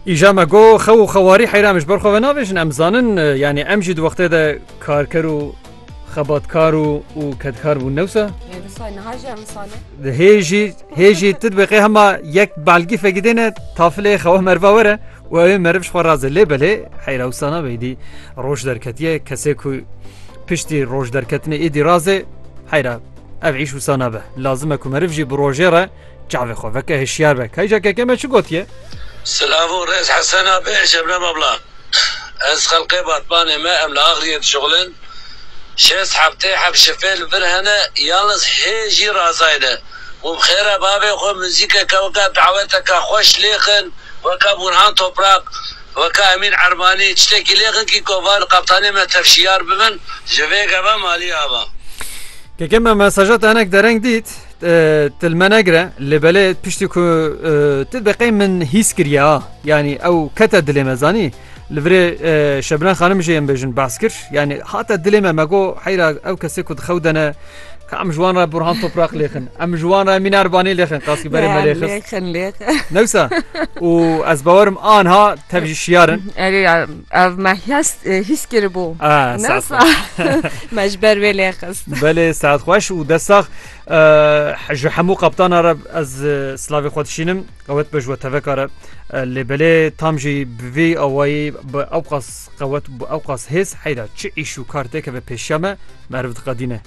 Îja me go xew û xewarî heyra min ji ber xwe venavêjin em zanin e, yanî em jî di wextê de karker û xebatkar û û kedkar bûn newsa di hêjî hêjî tu dibeqê hema yek belgî fegidêne tafilê xewa merva were û ew ê meriv ji xwe razê lê belê heyra wsana beydî roj derketiye kesê ku piştî roj derketinê êdî razê heyra ev îş wsana be lazime ku meriv jî bi rojê re Çavê xwe veke hişyar be kayca keke me çi gotiye. Silav û rêz Hesena bê Şebnem abla ez xelqê Batmanê me em li Axriyê dişuxilin şêst heftê heft şifê li vir hene yalnız hê jî Razay ne û bi xêra bavê xwe muzîkeke weke daweteke xweş lêxin weke Burhan Toprak weke Emîn Ermanî çitêkî lêxin kî ko va li qebtanê me tev şiyar bibin ji vê geve malî ava. Keke me mesaja te hinek dereng dît. Ti li me negire lê belê piştî ku ti deqê min hîs kiriye yanî ew kete dilê me zanî li virê şebina xanim jê em bêjin bas kir yanî hate dilê me me go heyra ew kesê ku dixew dene Em ji wan re Burhan Toprak lêxin. Em ji wan re Mînar Banê lêxin qaskî berê me lêxin. Newsa û ez bawerim anha tev jî şiyarin. Erê Ev me hîs hîs kiribû. Ah, Ne saet sa xweş. me ji ber wê lê xist. Belê saet xweş û dest sax. Eh, Ji hemû qaptana re ez eh, slavê xwe dişînim. Qewet be ji we teveka re. Eh, Lê belê tam jî bi vî awayî bi ewqas qewet û bi ewqas hêz heyra çi îş û kar têkeve pêşiya me meriv diqedîne.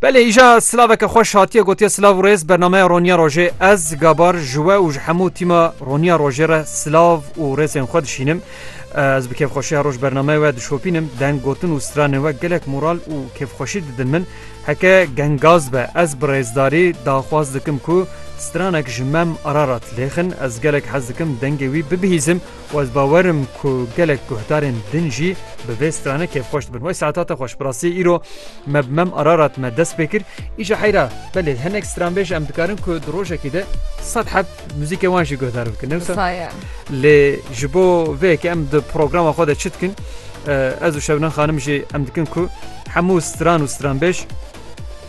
Belê îja silaveke xweş hatiye gotiye silav û rêz bernameya Roniya Rojê ez gabar ji we û ji hemû tîma Roniya Rojê re silav û rêzên xwe dişînim. Ez bi kêfxweşiya roj bernameyê we dişopînim deng gotin û stranên we gelek moral û kêfxweşî didin min. Heke gengaz be ez bi rêzdarî daxwaz dikim ku stranek ji mem Ararat lêxin ez gelek hez dikim dengê wî bibihîzim Û ez bawer im ku gelek guhdarên din jî bi vê strane kêfxweş dibin. Wey saet hate xweş. Bi rastiyê îro me bi mem Ararat me dest pê kir. Îşa heyra, belê hinek stranbêj em dikarin ku di rojekî de sed heb muzîkê wan jî guhdar bikin. Ne wisa? Lê ji bo vê yekê em di programa xwe de çi dikin, ez û Şebnem xanim jî em dikin ku hemû stran û stranbêj,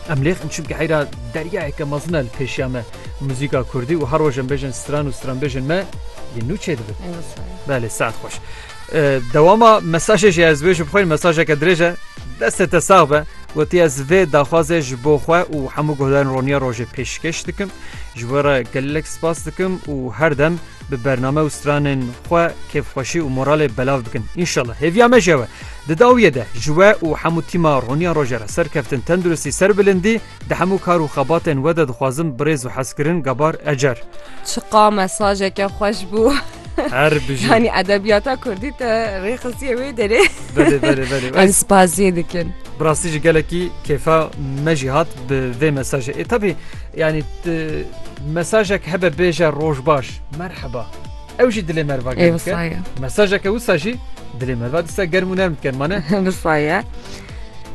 Em lêx in çimkî heyra deryayeke mezin e li pêşiya me. Muzîka Kurdî û her rojên bêjên stran û stranbêjên me yên nû çêdibin. Belê saet xweş. Dewama mesajê jî ez wê ji bixwîn mesajeke dirêj e destê te sax be. Wetî ez vê daxwazê ji bo xwe û hemû guhdarên roniya rojê pêşkeş dikim. Ji we re gelek spas dikim û her dem bi bername û stranên xwe kêfxweşî û moralê belav bikin. Înşallah hêviya me jewe. Di dawiyê de ji we û hemû tîma Roniya Roje re serkeftin, tenduristî, serbilindî di hemû kar û xebatên we de dixwazim birêz û hezkirin gabar ecer. Çiqa mesajeke xweş bû. Her bijî. Yanî edebiyata Kurdî te rê xisiye wê derê. Belê belê belê. Em spaziyê dikin. Bi rastî jî gelekî kêfa me jî hat bi vê mesajê. Ê tevî Yanî tu mesajek hebe bêje rojbaş, merheba. Ew jî dilê merva germ dike. Mesajeke wisa jî dilê merva dise germ û nerm dikin. Mane? Wisa ye.